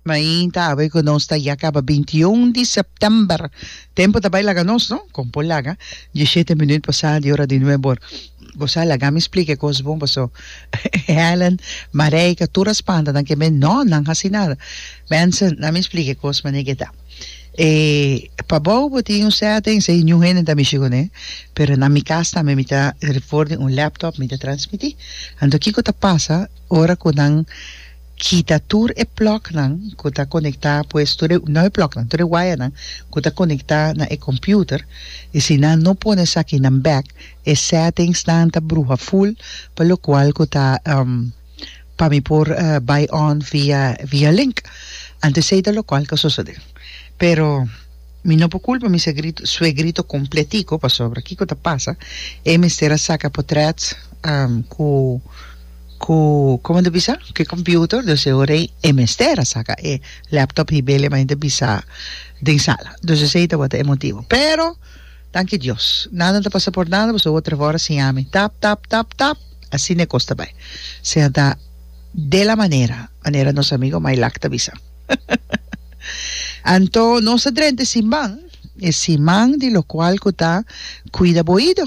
Mainta awe cu nos ta ya caba binti y un di september. Tempo ta bay laga nos, no? Con por laga? Diecisiete minuut pasa di ora di nuebe or. Gosa laga mi splica e cos bon paso Helen, Mareika, tur a spanta nan keme no nan haci nada. Benson, na mi splica e cos mane ke ta. E pabou bo tin un settings ey New Helen ta mishi cune, pero na mi cas tambe mi ta for di un laptop mi ta transmiti. Anto kico ta pasa? Ora ku nan kita tur e plòknan ku ta konektá pues tur e no e plòknan tur e wayanan ku ta konektá na e kòmpiuter i si nan no pone esaki nan bèk e sètingsnan ta bruha ful pa lokual ku ta pa mi por bai on via via link antes ei ta lokual ta sosodé pero mi no por kulpa mi segrito suegrito kompletiko pasobra kiko ta pasa e mester a saka potrèt ku. ku como ta bisa ku e computer dus e ora ei e mester a saka e laptop hib'el e mainta bisa den sala dus esei tabata e motibu pero danki Dios nada no ta pasa por nada boso otra for a siña mi tap tap tap tap asina e kos ta bai sea ta de la manera manera nos amigo Maylak ta bisa anto nos ta drenta e siman e siman di lo cual ku ta cuida bo oido.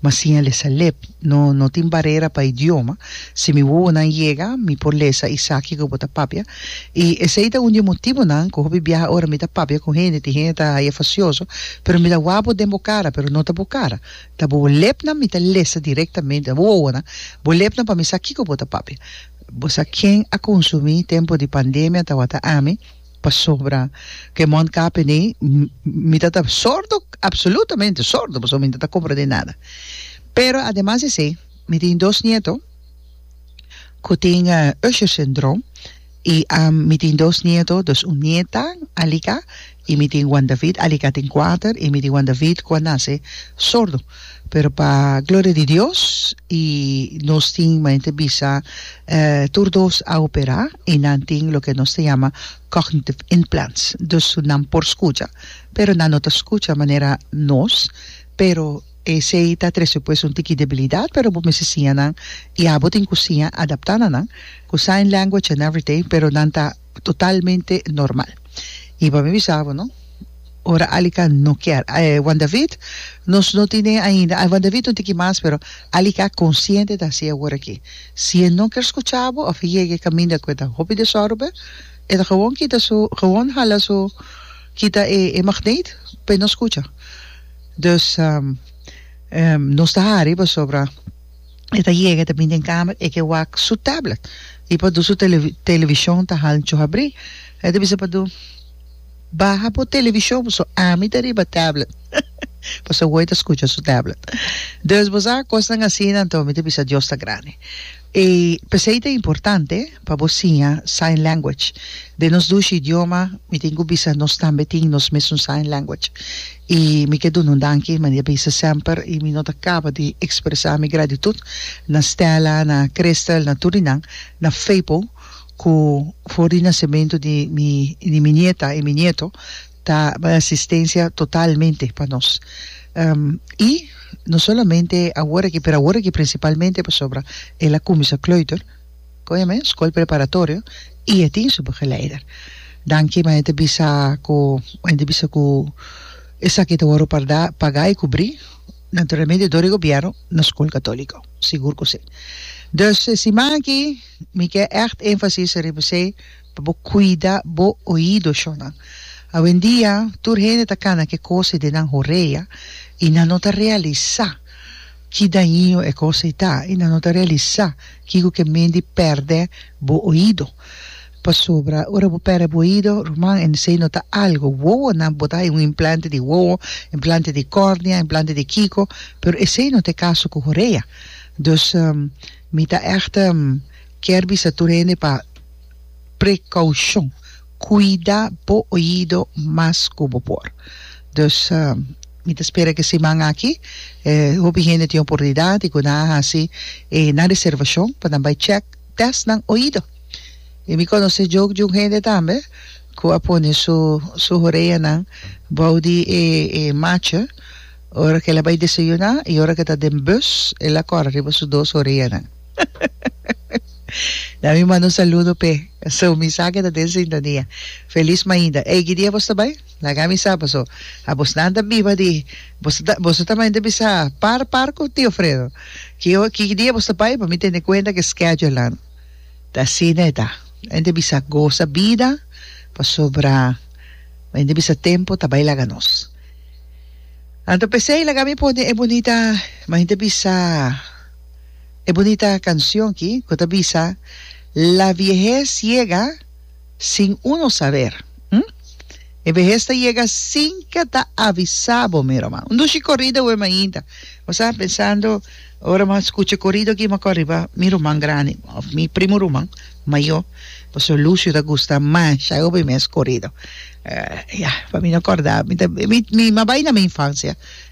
Ma si el es alep, no no tin barera pa idioma. Si mi wowonan yega, mi por lesa isaki ku bo ta papia. I esei ta un di e motibunan ku hopi biaha ora mi ta papia ku hende, tin hende ta haña fasioso, pero mi ta wak bo den bo kara, pero no ta bo kara. Ta bo lepnan mi ta lesa direktamente, ta bo wowonan, bo lepnan pa mi sa kiko bo ta papia. Bo sa ken a konsumí tempu di pandemia tawata ami. Pasobra ku e mond kape nei, mi ta ta sordo, absolutamente sordo, pasobra mi no ta komprendé nada. Pero ademas di esei, mi tin dos nieto ku tin Usher syndrome i mi tin dos nieto, dus un nieta, Alica, i mi tin Juan David. Alica tin kuater i mi tin Juan David ku a nase sordo. Pero pa gloria di Dios y nos tin como a gente bisa tur dos a opera y nan tin loke nos ta yama cognitive implants dus nan por scucha pero nan no ta scucha manera nos pero esey ta trece pues un tiki debilidad pero bo mester siña nan y abo tin cu siña adapta na nan cu sign language and everything pero nan ta totalmente normal. Y pa mi bisa bo no, ora Alica no kier, eh, Juan David, nos no tine ainda, Juan David no tin ki mas, pero Alica a consciente ta haci awor aki. Si e no kier scucha bo of e yega e caminda cu e ta hopi desorbe, e ta gewoon kita su, gewoon hala su, kita e, e magneet pa e no scucha. Dus, nos ta hari pasobra. E ta yega, e ta bini den kamer, e ke wak su tablet i pa dusu televi televishon ta hal nchu habri. E ta bisa pa du, Baha bo televishon paso ami ta riba tablet. Paso e woi ta skucha su tablet. Dus, bo sa, kosnan asina, anto mi ta bisa Dios ta grandi. E p'esei ta importante. Pa bo siña sign language. Den nos dushi idioma mi tin cu bisa nos tambe tin nos mesun sign language. Y mi ke dun'un danki mane bisa semper y mi no ta caba di expresa mi gratitud na Stella, na Crystal, na tur di nan, na Feypo cu for di nacemento di mi di mi nieta y mi nieto ta bay asistencia totalmente pa nos. Y no solamente awor aki pero awor aki principalmente pasobra el a cuminsa kleuter. Koe mes, Skol Preparatorio, i e tin su begeleider. Danki mei te bisa ku mei te bisa ku esaki ta wòrdu pardá pagá i kubrí naturalmente dor e gobièrnu na skol katòliko. Sigur ku si. Dus e siman aki mi ke ègt énfasis riba esei pa bo kuida bo oido shònan. Awendia tur hende ta kana ke kos i den nan horea i nan no ta realisá. Ki daño e kos ei ta i nan no ta realisá kiko ke mendi pèrdè bo oído. Pasobra ora bo pèrdè bo oído, ruman, esei no ta algu. Wowonan bo ta hai un implante di wowo, implante di kòrnia, implante di kiko, pero esei no ta e kaso ku horea. Dus, mi ta ègt kier bisa tur hende pa prekoushon. Cuida bo oido mas cu bo por. Dus, mi ta spera cu e siman aki hopi hende tin oportunidad di cu nan a haci e nan reservacion pa nan bay check test nan oido. Y mi conoce djoki di un hende tambe cu a pone su su horeanan bou di e e macha ora cu el a bay desayuna y ora cu ta den bus el a cora riba su dos horeanan. Na mi manda un saludo p'e. So mi sa ke ta den sintonia. Felis mainta. Ey, ki dia bos ta bai? Laga mi sa paso a bosnan ta biba di bos ta boso ta mainta bisa par par ku tio Fredo. Ki o ki dia bos ta bai pa mi tene kuenta ke schedule nan ta asina e ta. Mente bisa gosa bida pasobra mente bisa tempo ta bai laga nos. Anto p'esei laga mi pone e bunita mente bisa. e bunita cancion ki cu ta bisa, La viehez yega sin uno saber, hm? E vehez ta yega sin ke ta avisa bo mero man. Un dushi corrido awor mainta. Bo sa, pensando, ora bo a scucha e corrido aki, bo a cor riba mi ruman grandi, of mi primo ruman mayor, Pastor Lucio ta gusta masha obi mes corrido. Ya, pa mi no corda, mi ta, mi, mi a bay na mi infancia.